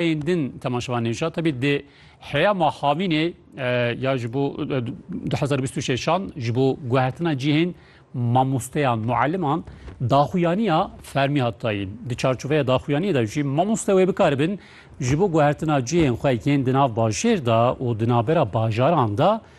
Yên din temaşevan nêja tebî dê heya ma havînê ya ji bo 2026an ji bo guhertina cihên mamosteyan mueliman daxuyaniya fermî hat dayîn. Di çarçoveya daxuyaniyê de jî mamoste wê bikaribin ji bo guhertina cihên xwe yên di nav bajêr de û di navbera bajaran de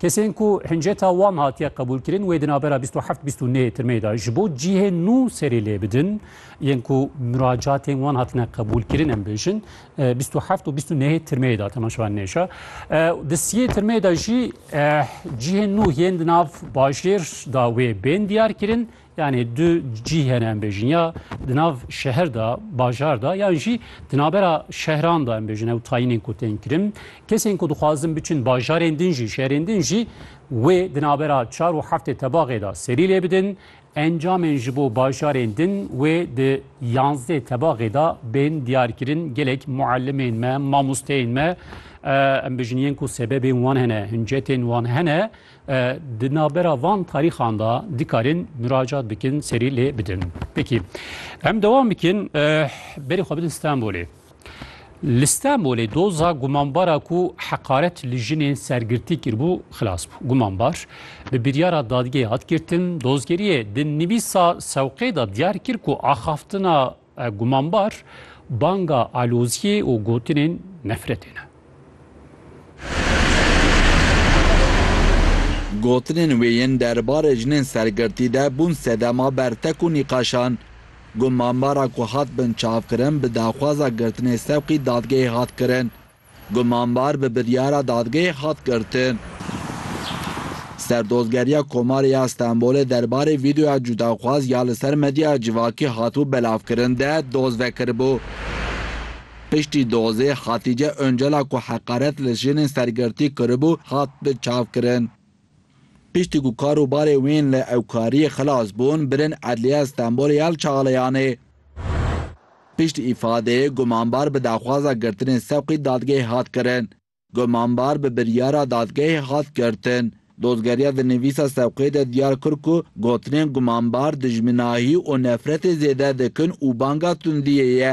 Kesên ku hinceta wan hatiye qebûlkirin wê di navbera bîst û heft bîst û nê tirmeyê de ji bo cihê nû serê lê bidin, yên ku miracatên wan hatine qebûlkirin em bêjin bîst û heft û bîst û nê tirmeyê de temaşevan nêşa. Di siyê tirmeyê de jî cihên nû yên di nav bajêr da wê bên diyar kirin Yanî du cî hene em bêjin ya di nav şeher de bajar de yan jî di navbera şehran de em bêjin ew tayînên ku tên kirin kesên ku dixwazin biçin bajarên din jî şerên din jî wê di navbera çar û heftê tebaxê de serî lê bidin encamên ji bo bajarên din wê di yanzdê tebaxê de bên diyarkirin gelek muellimên me mamosteyên me em bêjin yên ku sebebên wan hene hincetên wan hene Di navbera van tarîxan de dikarin muracat bikin serî lê bidin. Pekî em dewam bikin berî xwe bidin Stenbolê. Li Stenbolê doza gumanbara ku heqaret li jinên sergirtî kirbû xilas bû. Gumanbar bi biryara dadgehê hat girtin. Dozgeriyê di nivîsa sewqê de diyar kir ku axaftina Gumanbar banga aloziyê û gotinên nefretê ne. Gotinên wê yên der barê jinên sergirtî de bûn sedema bertek û nîqaşan. Gumanbara ku hat binçavkirin bi daxwaza girtinê sewqî dadgehê hat kirin. Gumanbar bi biryara dadgehê hat girtin. Serdozgeriya Komarê ya Stenbolê derbarê vîdeoya cudaxwaz ya li ser medyaya civakî hatibû belavkirin de doz vekiribû. Piştî dozê Hatîce Oncela ku heqaret li jinên sergirtî kiribû hat bi çavkirin. Piştî ku kar û barê wên li ewkariyê xilas bûn, birin Edliya Stenbolê ya li Çaglayanê. Pişt îfadeyê gumanbar bi daxwaza girtinê sewqî dadgehê hat kirin. Gumanbar bi biryara dadgehê hat girtin. Dozgeriya di nivîsa sewqê de diyar kir ku gotinên gumanbar dijminahî û nefretê zêde dikin û banga tundiyê ye.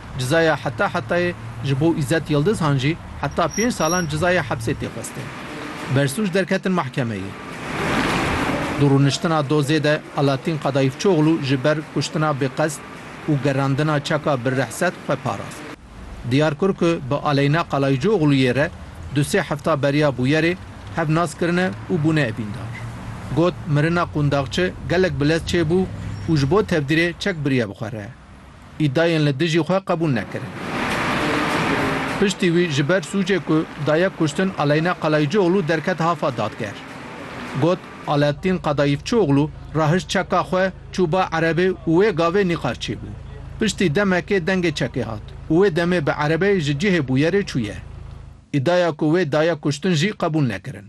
Cezaya heta hetayê ji bo Îzzet Yildizhan jî heta pênc salan cezaya hepsê tê xwestin. Bersûc derketin mehkemeyê. Di rûniştina dozê de Alatîn Qadaîfçoglû ji ber kuştina bêqesd û gerandina çeka bi rehset xwe parast. Diyar kir ku bi Aleyna Qalaîcoglûyê re du sê hefta beriya bûyerê hev nas kirine û bûne evîndar. Got, Mirina qûndaxçi gelek bilez çêbû û ji bo tevdîrê çek biriye bi xwe re. îdiayên li dijî xwe qebûl nekirin. Piştî wî ji ber sûcê ku daye kuştin Aleyna Kalaycioglû derket hafa dadger. Got, Alaaddin Kadayifçioglû rahişt çeka xwe, çû ba erebê û wê gavê nîqaşçî bû. Piştî demekê dengê çekê hat û wê demê bi erebeyê ji cihê bûyerê çûye. Îdiaya ku wê daye kuştin jî qebûl nekirin.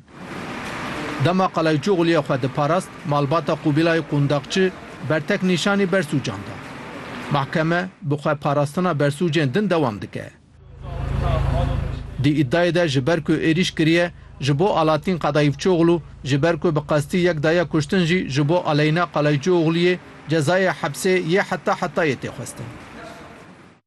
Dema Qalayçoxlûyê xwe diparast, malbata Qubîlay Qundakçi bertek nîşanî bersûcan da. Mehkeme bi xwe parastina bersûcên din dewam dike. Di îdiayê de ji ber ku êrîş kiriye ji bo Alatîn Qedayîfçoxlû, ji ber ku bi qestî yek daye kuştin jî ji bo Aleyna Qalaycioxlûyê cezayê hepsê yê heta hetayê tê xwestin.